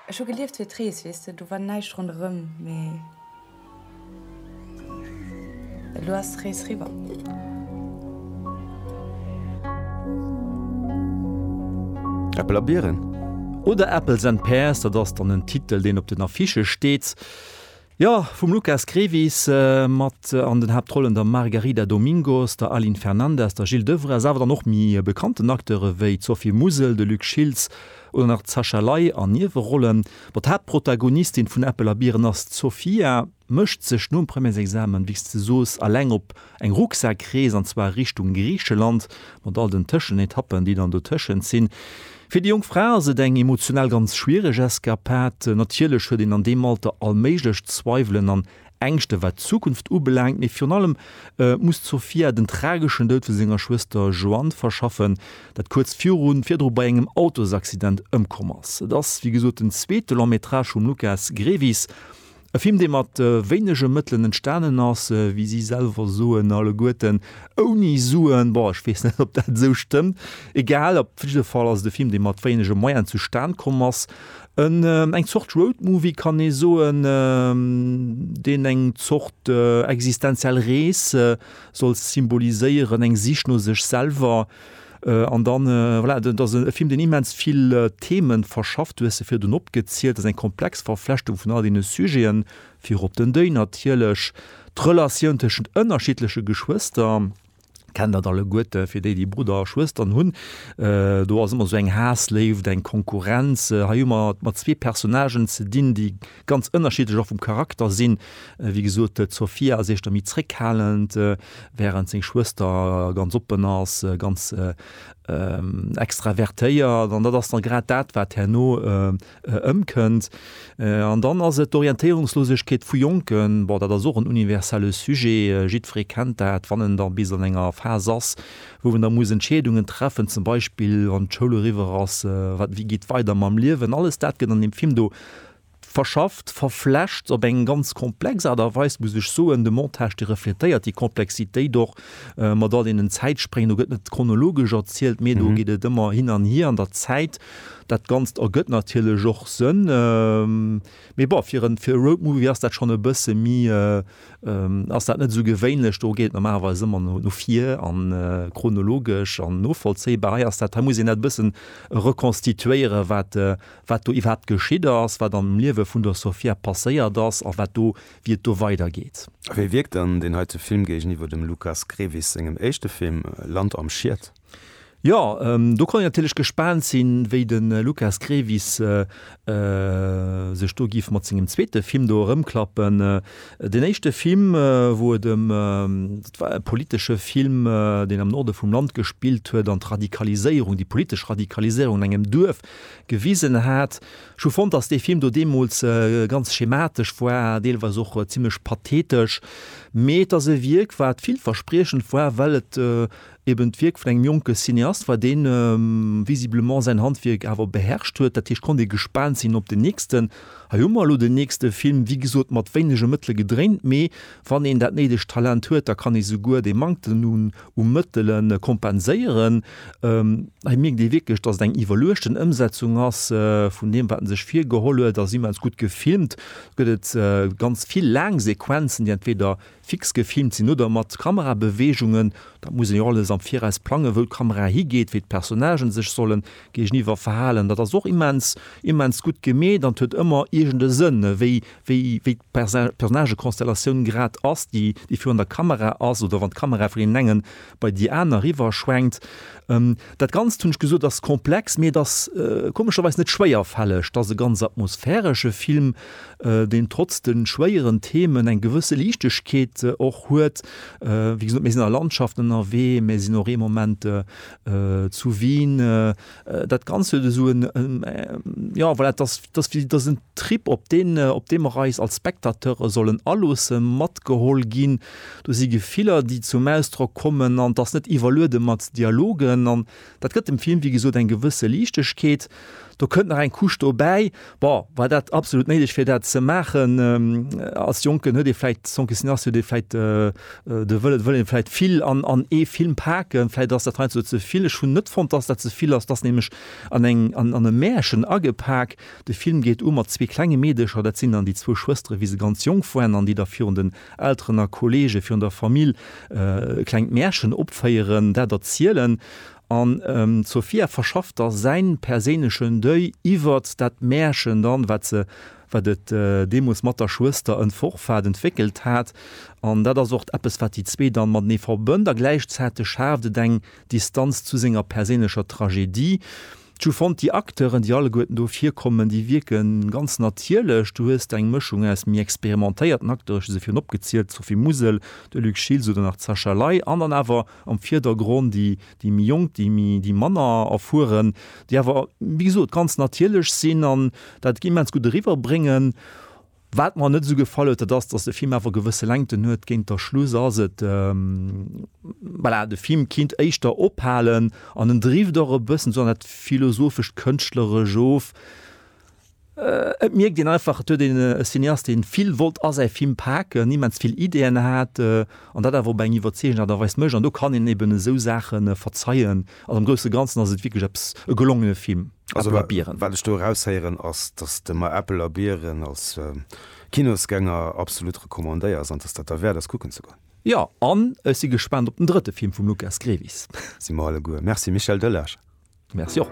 Ech hu gelieft fir d'Rees, weess de, do war näischt ronderëm, mee elo ass d'Rees riwwer. Äppel a Bieren oder Apples and Pears, dat ass dann en Titel, deen op den Affichë steet. Jo, vum Lukas Grevis, mat an den Haaptrollen der Margarida Domingos, der Aline Fernandez, der Jil Devrez, awer dann och méi bekannten Acteure wéi d'Sophie Mussel, de Luc Schiltz oder nach d'Sacha Ley an Niewerollen. Bon, d'Haaptprotagonistin vun Äppel a Biren ass d'Sofia, mécht sech nom Premièresexamen, wéi s de soos, alleng op Eng Rucksak-Rees, an zwar Richtung Griicheland, mat all den Tëschenetappen, déi dann dotëschent sinn. Fir déi jonk Fra ass et eng emotional ganz schwiereg Eskapad. Natierlech huet een an deem Alter all méiglech Zweiwelen an Ängschte wat d'Zukunft ubelaangt, mee virun allem muss d'Sofia den trageschen Doud vu senger Schwëster Joanne verschaffen, dat kuerz virdru bei engem Autosaccident ëmkomm ass. Et ass wéi gesot den zweete Long-Métrage vum Lukas Grevis. E Film, dee mat wéinege Mëttelen entstanen ass, wéi si selwer soen, alleguerten ouni Suen. Bon, ech weess net, ob dat esou stëmmt. Egal, op jidde Fall ass et e Film, dee mat wéinege Moyene zustan komm ass. Eng Zort Roadmovie, kann ee soen, deen eng Zort existenziell Rees soll symboliséieren, eng Sich no sech selwer. An dann, voilà, dat ass e Film, deen immens vill Themen verschafft. Du hues se virdrun opgezielt. Dat ass eng komplex Verflechtung vun all deene Sujeten, virop den Deuil natierlech, d'Relatioun tëschent ënnerschiddleche Geschwëster, kennt dat alleguerte fir déi, déi Brudder a Schwëstern hunn. Do ass ëmmer esou eng Haass-Léift, eng Konkurrenz. Hei hu mer et mat zwee Personnagen ze dinn, déi. ganz ënnerschiddlech och vum Charakter sinn. Wéi gesot, d'Sofia ass éischter méi zréckhalend, während seng Schwëster ganz oppen ass, ganz extravertéiert. An dat ass da grad dat, wat herno ëmkënnt. An dann ass et d'Orientéierungslosegkeet vu Jonken. Bon, dat ass och en universelle Sujet. Jiddweree kennt dat, wann en da bis an enger Phas ass, wou en da muss Entscheedungen treffen, zum Beispill wann d'Schoul eriwwer ass, wat, wéi geet weider mam Liewen. Alles dat gëtt an deem Film do verschafft, verflecht op eng ganz komplex Aart a Weis, muss ech soen. De Montage, dee refletéiert déi Komplexitéit och mat all deenen Zäitspréngen. Do gëtt net chronologesch erzielt, mee do geet et ëmmer hin an hier an der Zäit. Dat Ganzt ergëtt natierlech och Sënn. Mee bon, fir e Roadmovie ass dat schonn e bësse méi, ass dat net esou gewéinlech. Do geet et normalerweis ëmmer no vir a chronologesch an novollzéibar. Hei ass dat, hei muss een dat e bëssen rekonstituéieren, wat wat do iwwerhaapt geschitt ass, wat am Liewe vun der Sofia passéiert ass a wat do, wéi et do weidergeet. A wéi wierkt dann deen heite Film géigeniwwer dem Lukas Grevis sengem éischte Film Land am Schied? Jo, do konnt een natierlech gespaant sinn, wéi de Lukas Grevis sech do giff mat sengem zweete Film do erëmklappen. Deen éischte Film, wou et ëm, dat war e politesche Film, deen am Norde vum Land gespillt huet an d'Radikaliséierung, déi politesch Radikaliséierung an engem Duerf gewisen hat. Ech hu fonnt, datt dee Film do deemools ganz schematesch war, deelweis och zimmlech pathetesch, mee et ass e Wierk, wat villverspriechend war, well et eben d'Wierk vun engem jonke Cineast war, dee visiblement säin Handwierk awer beherrscht huet. Dat heescht, konnt ee gespaant sinn op den nächsten. Hei hu mer elo den nächste Film, wéi gesot mat wéinege Mëttele gedréint, mee wann een dat néidegt Talent huet, da kann ee souguer dee Manktem u Mëttele kompenséieren. Hei mierkt ee wierklech, dass et eng iwwerluechten Ëmsetzung ass vun deem, wat en sech virgeholl huet, ass immens gutt gefilmt. Gëtt et ganz vill laang Sequenzen, déi entweder fix gefilmt sinn oder mat Kamerabeweegungen. Dat muss een jo alles am Viraus plangen, wou d'Kamera higeet, wéi d'Personnagen sech solle géigeniwwer verhalen. Dat ass och immens, immens gutt gemeet an et huet ëmmer iergend e Sënn, wéi wéi wéi d'Personnagekonstellatioun grad ass, déi déi virun der Kamera ass oder wann d'Kamera vun deenen engen bei déi aner riwwerschwenkt. Dat Ganzt, hunn ech gesot, ass komplex, mee et ass komescherweis net schwéierfälleg. Et ass e ganz atmosphäresche Film, deen trotz de schwéieren Themen eng gewësse Liichtegkeet och huet. Wéi gesot, mir sinn an der Landschaft ënnerwee, mir sinn och ee Moment zu Wien. Äh, dat ganz huet eso en en äh, ja voilà, das das wie das en Trip op den äh, op dem Reis als Spectateure sollen allosse matgeholl ginn. Du si Gefiller, déi zum Ausdrock kommen an dass net iwwerluede mat Dialogen an dat gëtt dem Film wie gesot eng gewësse Liichtegkeet. Do kënnt nach eng Kusch dobäi, Bon, war dat absolut néideg fir dat ze maachen? Als Jonken huet ee vläicht, sans Cuisinastes, huet ee vläicht de Wëllen, et wëll een vläicht vill an ee Film paken. Vläicht ass dat heiansdo ze vill. Ech hunn net fonnt, dass dat ze vill ass. Et ass nämlech an eng, an, an e Märchen agepak. De Film geet u mat zwee klenge Meedecher, dat sinn dann déi zwou Schwëstere wéi se ganz jonk waren an déi da virun den Elteren a Kollege, virun der Famill e klengt Märchen opféieren, dat erzielen. An d'Sofia verschafft da säin perséinlechen Deuil iwwert dat Märchen dann, wat se, wat et deemools mat der Schwëster en forfait entwéckelt hat. An dat ass och eppes, wat déi zwee dann matenee verbënnt. A gläichzäiteg schaaft et eng Distanz zu senger perséinlecher Tragedie. Ju fonnt déi Acteuren déi alleguerten do virkommen, déi wierken ganz natierlech. Du hues eng Mëschung aus méi experimentéierten Acteuren, ech hu se virun opgezielt, d'Sophie Musel, de Luc Schiltz oder nach d'Sascha Ley, an dann awer am Vierdergronn déi déi méi jonk, déi méi déi manner erfueren, déi awer wéi gesot ganz natierlech sinn an dat immens gutt eriwwerbréngen Wat mer net esou gefall huet, dat ass, dass de Film awer gewësse Längten huet. Géint der Schluss ass et, voilà, de Film kinnt éischter ophalen an en drift och e bëssen esou an dat philosophescht, kënschtleresch of. Et mierkt een einfach, et huet een e Cineast, dee vill wollt a säi Film paken, immens vill Ideeën hat an dat awer op eng iwwerzeegend Aart a Weis mécht. An do kann een eben esou Saache verzeien. Also am grousse Ganzen ass et wierklech eppes, e gelongene Film, Äppel a Biren. Also wat ech do eraushéieren ass, dass de mer Äppel a Biren als Kinosgänger absolut recommandéiers an dass dat derwäert ass kucken ze goen. Jo, an ech si gespaant op den drëtte Film vum Lukas Grevis. Si mer alleguer. Merci Michel Delage. Merci och.